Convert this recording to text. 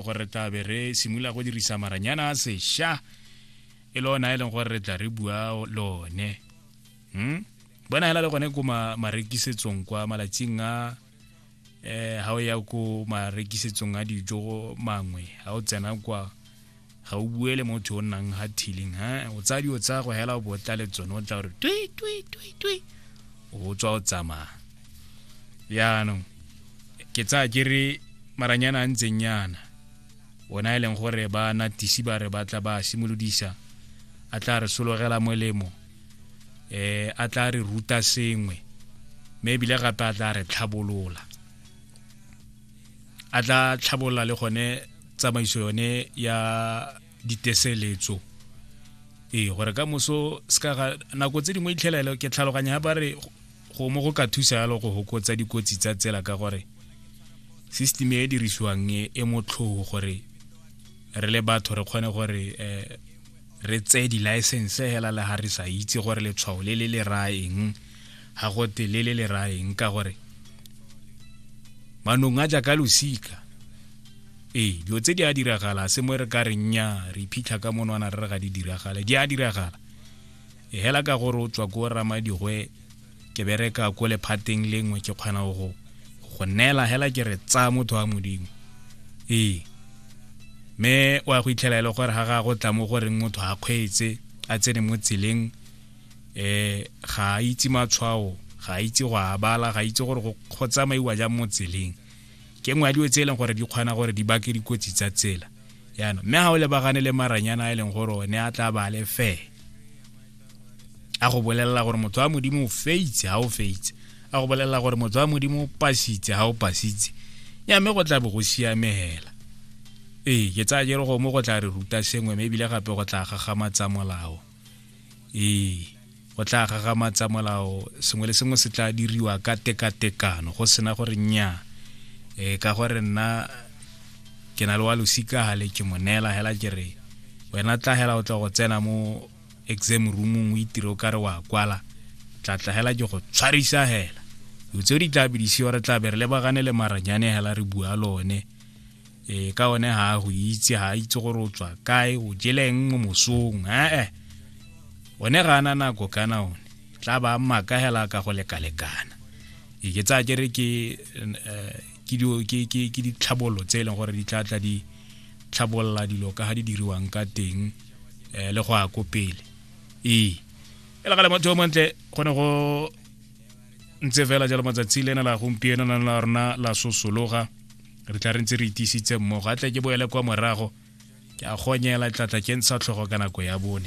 gore re tla be re simolola go dirisa maranyana a sesha e le ona e leng gore re tla re bua lone hmm? bona hela le gone ko marekisetsong kwa malatsing a eh ha o ya ko marekisetsong a dijo mangwe ha o tsena kwa ga o bue le motho o nnang ha thiling ha o tsaya dio tsa go hela o botla le tsone o tla gore twi twi twi twi o tswa o tsamaya jaanong ke tsaya ke re maranyana a ntseng yana ona e leng gore ba natisi ba re batla ba simolodisa a tla re sologela molemo eh a tla re ruta sengwe mme ebile gape a tla re tlhabolola a tla tlhabolola le gone tsamaiso yone ya diteseletso ee gore ka moso se ka nako tse dingwe itlhelelo ke tlhaloganya ba re go mo go ka thusa yalo go hokotsa dikotsi tsa tsela ka gore system e e dirisiwang e, e motlhogo gore re le batho re kgone gore um re tseye di-license hela le ga re sa itse gore letshwao le le le raya eng ga gote le le le raya eng ka gore manong a jaaka losika ee dilo tse di a diragala se mo re ka re nya re iphitlha ka monwana re re ga di diragale di a diragala e hela ka gore o tswa ko ramadigwe ke bereka ko lephateng lengwe ke kgona go go neela hela ke re tsaya motho wa modimo ee mme o ya go itlhela e le gore ga ga go tla mo goreng motho a kgweetse a tsene mo tseleng um ga a itse matshwao ga a itse go a bala ga a itse gore go tsamaiwa jang mo tseleng ke nngwe ya dilo tse e leng gore di kgona gore di bake dikotsi tsa tsela yana mme ga o lebagane le maranyana a e leng gore o ne a tla ba le fee a go bolelela gore motho wa modimo o feitse ga o feitse a go bolelela gore motho wa modimo o pasitse ga o pasitse ya mme go tla bo go siamegela ee ke tsaya jere go mo go tla re ruta sengwe mme ebile gape go tla gagamatsa molao ee go tla gagamatsa molao sengwe le sengwe se tla diriwa ka tekatekano go sena gore nya e ka gore nna ke na le wa losika gale ke mo neela hela ke re wena tla hela o tla go tsena mo exam roomong o itire o kare wa kwala tla tla hela ke go tshwarisa hela o tse di tla bidisiwa re tla be re lebagane le maranyane hela re bua lone ee ka one ga a go itse ga a itse gore o tswa kae o jeleng mo mosong ee one ga ana nako kana one tla ba mmaka hela ka go lekalekana e ke tsaya kere ke eh, ke ditlhabololo tse e leng gore di tla tla di tlhabolola dilo ka ga di diriwang ka teng um le go ya ko pele ee e le gale motho o montle go ne go ntse fela jalo matsatsi le ena la gompieno na la rona la sosologa re tla re ntse re itisitse mmogo a tle ke boele kwa morago ke a gonyela tlatla ke ntsha tlhogo ka nako ya bone